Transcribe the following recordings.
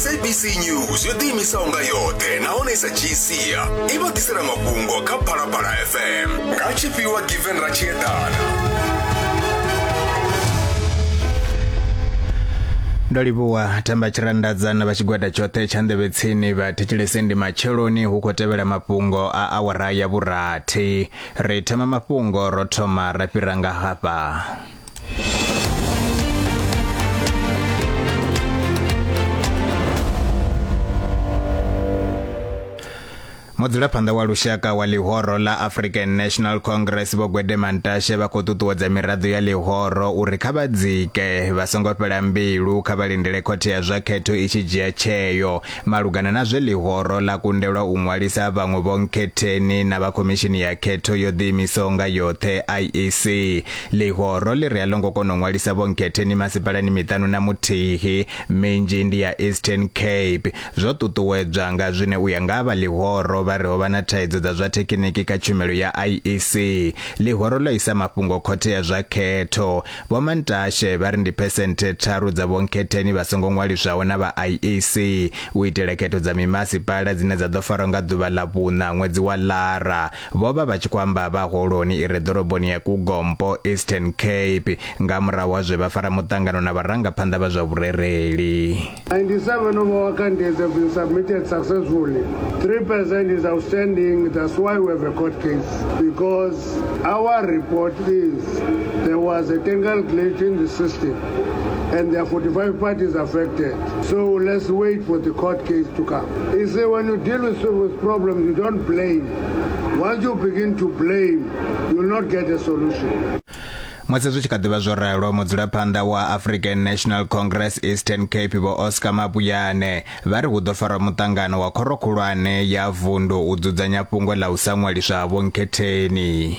sabc news yo ḓiimisaho nga yoṱhe nahone i sa dzhii sia i vha ḓisela mafhungo kha phalaphala fm nga tshifhiwa given ra tshi eḓana ndo livhuwa themba tshirandadzana vha tshigwada tshoṱhe tsha nḓevhe tsini vha thetshelese ndi matsheloni hu khou tevhela mafhungo a awara ya vhurathi ri thoma mafhungo ro thoma ra fhira nga hafha mudzulaphanḓa wa lushaka wa ḽihoro ḽa african national congress vho gwede mantashe vha khou ṱuṱuwedza miraḓo ya ḽihoro uri kha vha dzike vha songo fhela mbilu kha vha lindele khothe ya zwa khetho i tshi dzhia tsheo malugana na zwe ḽihoro ḽa kundelwa u ṅwalisa vhaṅwe vhonkhetheni na vha khomishini ya khetho yo ḓiimisaho nga yoṱhe iec Ḽihoro ḽi ri a ḽo ngo kona u ṅwalisa vhonkhethe ni masipalani miṱanu na muthihi, minzhi ndi ya Eastern Cape. Zwo ṱuṱuwedzwa nga zwine u ya nga ha vha ḽihoro vha ri ho vha na thaidzo dza zwa thekhiniki kha tshumelo ya IEC. Ḽihoro ḽo isa mafhungo khothe ya zwa khetho. Vho Mantashe vha ri ndi phesenthe tharu dza vhonkhetheni vha songo ṅwaliswaho na vha IEC u itela khetho dza mimasipala dzine dza ḓo farwa nga ḓuvha ḽa vhuṋa ṅwedzi wa Lara. Vho vha vha tshi khou amba vha holoni i re ḓoroboni ya Kugompo, Eastern Cape, nga murahu ha zwe vha fara muṱangano na vharangaphanḓa vha zwa vhurereli. 97 of our candidates have been submitted successfully. 3 percent is outstanding, that's why we have a court case. Because our report is there was a technical glitch in the system and there are 45 parties affected. So let's wait for the court case to come. You see, when you deal with, with problems, you don't blame. musi zwi tshi kha ḓivha zwo ralo mudzulaphanḓa wa african national congress eastern cape vho oscar mabuyane vha ri hu ḓo farwa muṱangano wa khoro khulwane ya vundu u dzudzanya fhungo ḽa u sa ṅwaliswa ha vhonkhetheni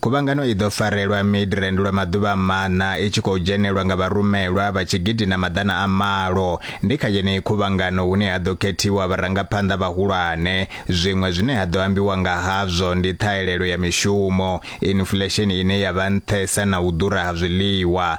Khuvhangano i ḓo farelwa Midrand lwa maḓuvha maṋa i tshi khou dzhenelwa nga vharumelwa vha tshigidi na maḓana a malo. Ndi kha yeneyi khuvhangano hune ha ḓo khethiwa vharangaphanḓa vhahulwane. Zwiṅwe zwine ha ḓo ambiwa nga hazwo ndi ṱhahelelo ya mishumo, inflesheni ine ya vha nṱhesa na u ḓura ha zwiḽiwa.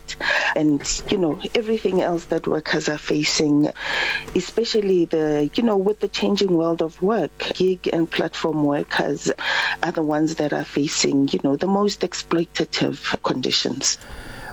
and you know everything else that workers are facing especially the you know with the changing world of work gig and platform workers are the ones that are facing you know the most exploitative conditions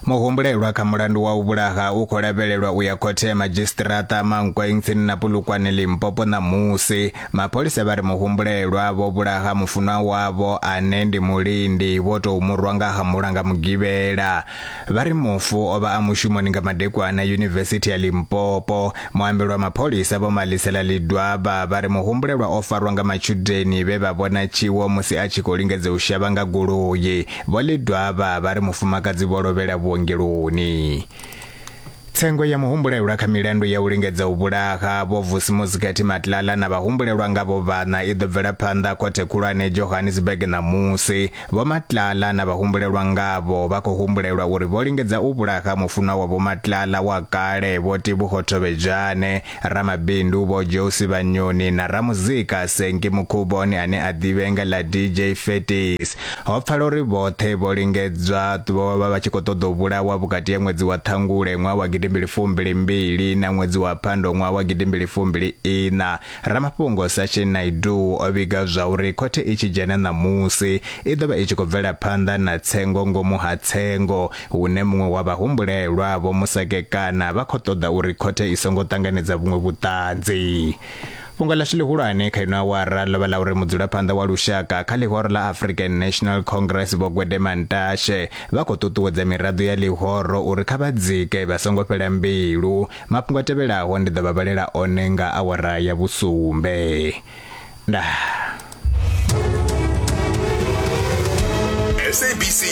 muhumbulelwa kha mulandu wa u vhulaha u khou lavhelelwa u ya khothe ya madzhisiṱiraṱa mankweng tsini na pulukwane limpopo ṋamusi mapholisa vha ri muhumbulelwa vho vhulaha mufunwa wavho ane ndi mulindi vho tou murwa nga hamula nga mugivhela Vha ri mufu o vha a mushumoni nga madekwana Yunivesithi ya Limpopo. Muambeli wa mapholisa Vho Malisela Lidwaba vha ri muhumbulelwa o farwa nga matshudeni vhe vha vhona tshiwo musi a tshi khou lingedza u shavha nga goloi. Vho Lidwaba vha ri mufumakadzi vho lovhela vhuongeloni. Tsengo ya muhumbulelwa kha milandu ya u lingedza u vhulaha Vho Vusi Mozikhathi Matlala na vhahumbulelwa ngavho vhaṋa i ḓo bvela phanḓa Khothe Khulwane Johannesburg ṋamusi. Vho Matlala na vhahumbulelwa ngavho vha khou humbulelwa uri vho lingedza u vhulaha mufunwa wa Vho Matlala wa kale Vho Tebogo Thovhedzwane Ramabindu Vho Josi Vhanyoni na ramuzika Senki Mukhuboni ane a ḓivhenga ḽa DJ Fetis. Ho pfala uri vhoṱhe vho lingedzwa vho vha vha tshi khou ṱoḓa u vhulawa vhukati ha ṅwedzi wa Ṱhangule ṅwaha wa gidimbili fumbili mbili na ṅwedzi wa Phando ṅwaha wa gidimbili fumbili iṋa. Ramafhungo Sachin Naidu o vhiga zwa uri khothe i tshi dzhena ṋamusi i ḓo vha i tshi khou bvela phanḓa na tsengo ngomu ha tsengo hune muṅwe wa vhahumbulelwa vho musekekana vha khou ṱoḓa uri khothe i songo ṱanganedza vhuṅwe vhuṱanzi fhungo ḽashu ḽihulwane kha ino awara ḽo vha ḽa uri mudzulaphanḓa wa lushaka kha ḽihoro ḽa african national congress vho gwedema ntashe vha khou ṱuṱuwedza miraḓo ya ḽihoro uri kha vha dzike vha songo fhela mbilu mafhungo a tevhelaho ndi ḓo vha vhalela one nga awara ya vhusumbe nda SABC